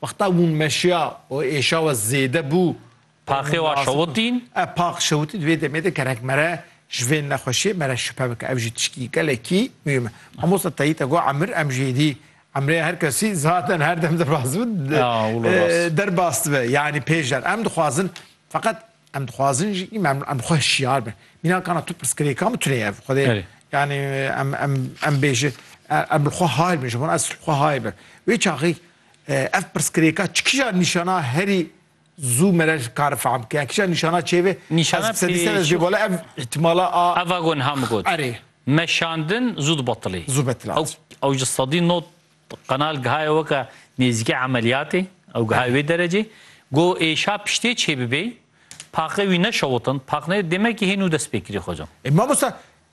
Wexta ûn meşiya û êşa we zêde bû. Paxê wa şewitîn. Ev pax şewitî di vê demê de gerek mere ji vê nexweşiyê mere şüphe bike. Ev jî tiştî gelekî muhîm e. Mamosta Tayî te got emir em jî êdî emrê her kesî zaten her dem derbas bû derbas dibe. Yanî pêşder em dixwazin feqet em dixwazin jî îm em bi xwe hişyar bin. Mîna kana tu pirsgirêka min tune ye xwedê yanî em em em bêje em li xwe hay bin ji wan ez li xwe hay bin. Wê çaxê Ev pirsgirêka çi kija nîşana herî zû me re kar fehm ke kija nîşana çêvê nîşana sedîsede jê bala ev îtimala a eva gon ham got erê meşandin zû dibetilê zû betilê ew ew ji sedî not qenal gihaya weke nêzîkê emeliyatê ew gihaya wê derecê go êşa piştê çêbibê paqê wî neşewitin paqnê demekî hênû dest pê kirî xwecam. E mamosta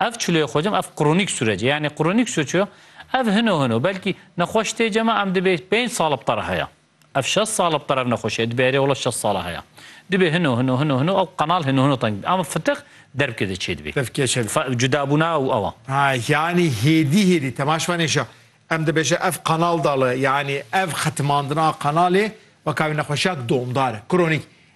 Ev çilûyê xwecim ev kronîk sûrece. Yanî kronîk sûr çi yo? Ev hino hino belkî nexweş tê cem a em dibê pênc sal bi te re heye. Ev şeş sal bi te re ev nexweşî heye. Dibê erê wela şeş sal e heye. Dibê hino hino hino hino ew qenal hino hino teng bibî. Ama fitix derbkê de çêdibî. Dev kê çêdibî. Fe cudabûna ew ew a. Ha yanî hêdî hêdî temaş bane îşa. Em dibêje ev qenal dal e. Yanî ev xetimandina qenalê weka wî nexweşiya domdar e. Kronîk.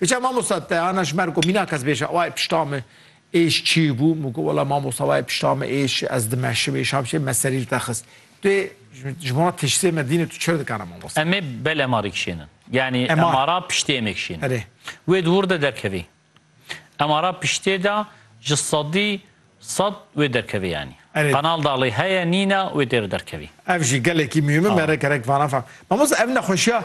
Îca mamosta te ana ji mer ku mîna kes bêje wayê pişta min êş çi bû, min got wela mamosta wayê pişta min êş ez dimeşim êşam çi ye, me serî li te xist. Tu yê ji bo tiştê me dînê tu çi dikana mamosta? Em ê bel emarî kişênin. Yanî emara piştê em ê kişênin. Erê. Wê di wir de derkevê. Emara piştê de ji sedî sed wê derkevê yanî. Erê. Qenal da lê heye nîne wê têr derkevî. Ev jî gelekî muhîm e, me rek rek vana fam. Mamosta ev nexweşiya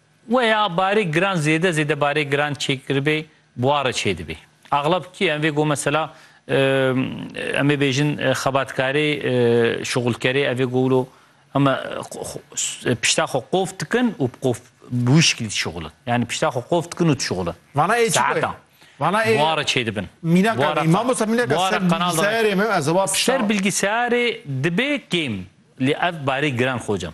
We ya barê giran zêde zêde barê giran çêkiribê buare çêdibê. Axlab kî em vê go mesela em ê bêjin xebatkarê şuxulkerê ev ê go wilo heme pişta xwe qof dikin û qof bi wî şiklî dişuxulin. Yanî pişta xwe qof dikin û dişuxulin. Vana ê çi ye? Vana ê buare çêdibin. Mînaka vê mamosta mînaka ser bilgisayarê me ez ê wa pişta. Ser bilgisayarê dibê kêm lê ev barê giran xocam.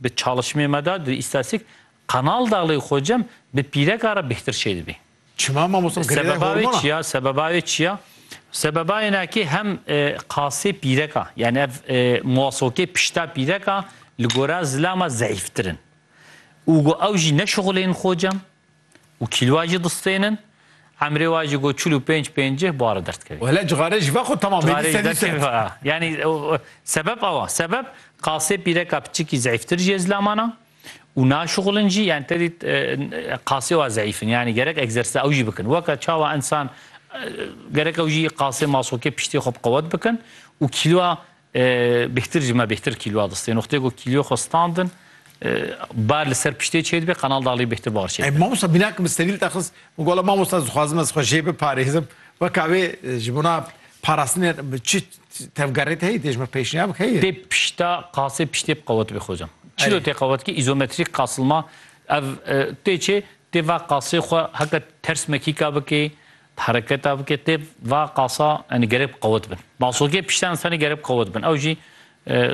Bi çalişmê me de di îstasîk Qanal Dağlê xwe cem bi pîreka re bihtir çê dibî. Çima mamosta girêdayê hormona? Sebeba wê çi ya? Sebeba wê ne ki hem qasê pîreka yanî ev muwasokê pişta pîreka li gora zilama zeyîftir in û got ew jî neşixulên xwe cem Û kîlwa jî distênin. Emrê wa jî got çil û pênc pêncih bare derdikevî. Wele cixarê ji ve xwe temam bê, dîse dîse. Yanî sebeb ew a. Sebeb qasê pîreka piçikî zeîftir jî ye zilaman a û naşixulin jî yanî te dît qasê wa zeîf in. Yanî gerek egzersîza ew jî bikin. Weke çawa însan gerek ew jî qasê masokê piştê xwe bi qewet bikin û kîlwa Bêhtir jî me bêhtir kîlwa distê. Noxtê ku kîlyo xwe standin bar li ser piştê çêdibe qanal daxilî bêhtir bar çêdibe. Mamosta bîna ki min sterîl te xist min gola mamosta ez dixwazim ez xwe jê biparêzim weka wê ji bona parastinê çi tevgerê te heye tê ji min pêşniyarek heye? Tê pişta qasê piştê bi qewet bê xocam. Çilo tê qewet ki îzometrîk qasilma ev tê çê tê va qasê xwe heke ters mekîka bikê Bi hereketa bike tê va qasa yani gerek bi qewet bin. Masokê pişta insanî gerek bi qewet bin. Ew jî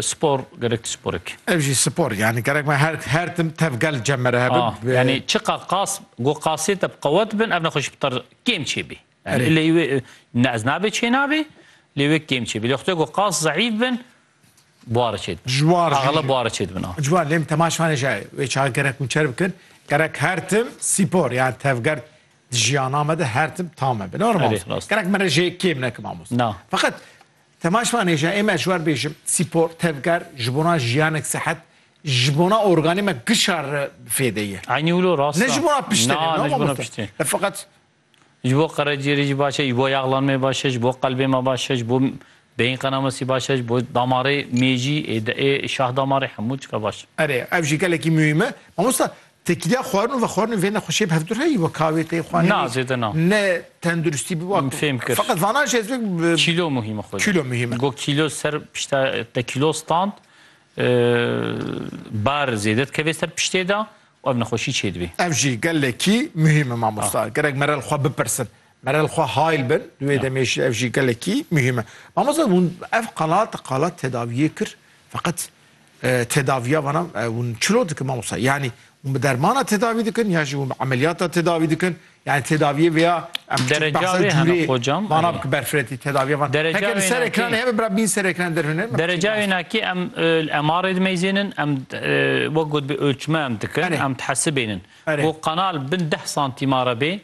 spor gerek tişt sporek. Ew jî spor yani gerek me her her tim tevgel cem mere hebin. Ah, yani çiqa qas go qasê te bi qewet bin ev nexweşî bi ter kêm çêbî. Yani lê wê ne ez nabê çê nabê lê wê kêm çêbî. Lê xwedê go qas zayıf bin buhara çêdibin. Ciwar jî. Axla buhara çêdibin. Ciwar lêm temaşvanê jî wê çaxê gerek hûn çer bikin. Gerek her tim spor yani tevger Di jiyana me de her tim tam e. Bina Erê, rast. Gerek min re jê kêm nekim amos. Na. Fakat temaş vanê jî ê me ji wer bêjim spor, tevger ji bona jiyanek sehet ji bona organê me gişar re fêdê ye. Eynî wilo rast. Ne ji bona piştê ne, Na, ne ji bona mamoste. piştê. E fakat Ji bo qerecîyerê jî baş e, ji bo yaxlanmê baş e, ji bo qelbê me baş e, ji bo beyin qenamasî baş e, ji bo damarê mêjî ê de ê şah damarê hemû çika baş e. erê ev jî gelekî muhîm e. Mamoste Têkiliya xwarin û vexwarinê vê nexweşiyê bi hev dûr heye. Wek kavê tê xwarinê. Na zêde na. Ne tenduristî bi wek. Fêm kir. Feqet vanan jî ez vek bi. Kîlo muhîm e xweda. Kîlo muhîm e. Got kîlo ser pişta te kîlo stand bar zêde dikevê ser piştê de û ev nexweşî çêdibê. Ev jî gelekî muhîm e mamosta. Gerek me re li xwe bipirsin. Merel xwe hayl bin di wê demê jî ev jî gelekî muhîm e. Mamosta hûn ev qala te qala tedaviyê kir feqet e, tedaviya vana e, hûn çilo dikin mamosta? Yanî hûn bi dermana tedavî dikin ya jî hûn bi emeliyata tedavî dikin? Yanî tedaviyê vêya em Derece behsa wê hene cûrê xocam, vana erê. bike berfiretî tedaviya van. Derece Heke li ser wênakî. ekranê hebe bira bîn ser ekranê derhûne me Derece qîmaz. wênakî em e, li MR dimeyzênin, em e, wek gotibê ölçme em dikin, Erê. em dihesibênin. Erê. Ku qanal bin deh santîmare bê,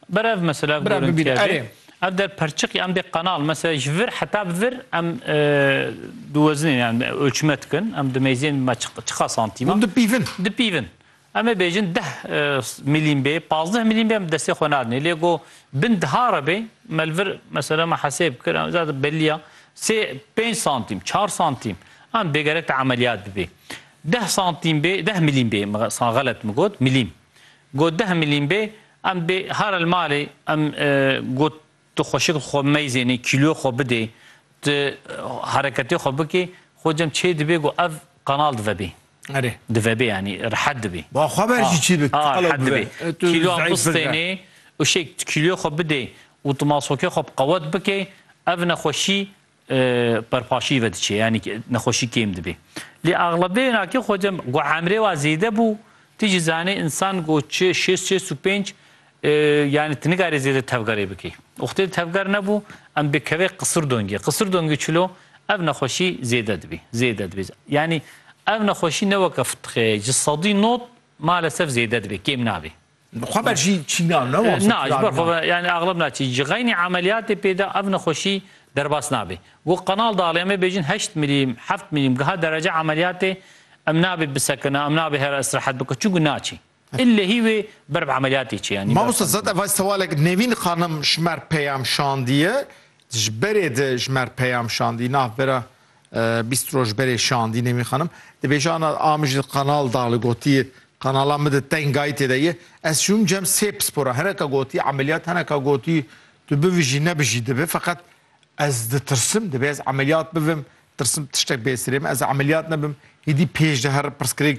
Bere ev mesele ev gorintîye bê. Ev der perçiq yan bê qenal. Mesele ji vir heta bi vir em diwezinên yan ölçme dikin. Em dimeyzên bima çiqa santîma. Hûn dipîvin. Dipîvin. Em ê bêjin deh milîm bê, pazdeh milîm bê em destê xwe nadinê. Lê ku bin diha re bê me li vir mesele me hesêb kir zad belî ya sê pênc santîm, çar santîm em dê gerek te emeliyat bibê. Deh santîm bê, deh milîm bê, xelet min got, milîm. Got deh milîn bê, em bê hare li malê, em got tu xweşik xwe meyzênê, kîloyê xwe bidê, tu hereketê xwe bikê, xwe cem çê dibê ku ev qanal divebê. Erê. Divebê yanî rihet dibê. Ba xwe ver jî çi bik, tu qelew bibe. Kîloyan bistênê û şêk kîloyê xwe bidê û tu masokê xwe bi qewet bikê, ev nexweşî Perpaşî vediçe yanî nexweşî kêm dibê. Lê axlebê na ke xwe cem ku emrê wa zêde bû ti jî zanê însan ku çi şêst şêst û pênc yanî ti nikarî zêde tevgerê bikî. Wextê tevger nebû em bikevê qisir dongê. Qisir dongê çilo ev nexweşî zêde dibî. Zêde dibî. Yanî ev nexweşî ne weke fitixê ye. Ji sedî nod malesef zêde dibê. Kêm nabê. Xweber jî çîna ne wan. Na ji ber xwe yani axlab naçî. Ji xeynî emeliyatê pê de ev nexweşî derbas nabê. Wek qenal de aliyeme bêjin heşt milîm, heft milîm giha derece emeliyatê em nabê bisekine, em nabê here îstirahet bikin çunku naçî. Illehî wê ber bi emeliyatê çi yanî. Mamosta zad ev hay sewalek Nevîn xanim ji mer peyam şandiye. Ji berê de ji mer peyam şandî navbera Bîst roj berê şandî Nemî xanim dibêje ana a min ji qanal da li gotiye qanala min di tengayî tê de ye ez şûm cem sê pispora hineka gotî emeliyat hineka gotî tu bivijî nebijî dibe feqet ez ditirsim dibe ez emeliyat bivim tirsim tiştek bêsirê min ez emeliyat nebim hêdî pêş de her pirsgirêk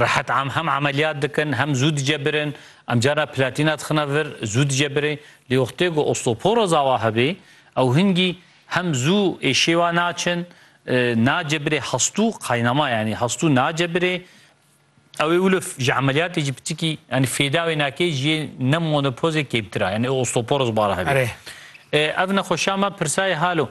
Rehet am hem emeliyat dikin hem zû dicebirin. Em carna platîna dixine vir zû dicebirê. Lê wextê ku osteoporoz awa hebê ew hingî hem zû ê şêwa naçin, nacebirê hestû qaynama yanî hestû nacebirê. Ew ê wilo ji emeliyatê jî pitikî yanî fêda wê nake ji yê ne monopozê kêmtir a. Yanî osteoporoz bala hebê. Erê. Ev nexweşa me pirsayê hal o.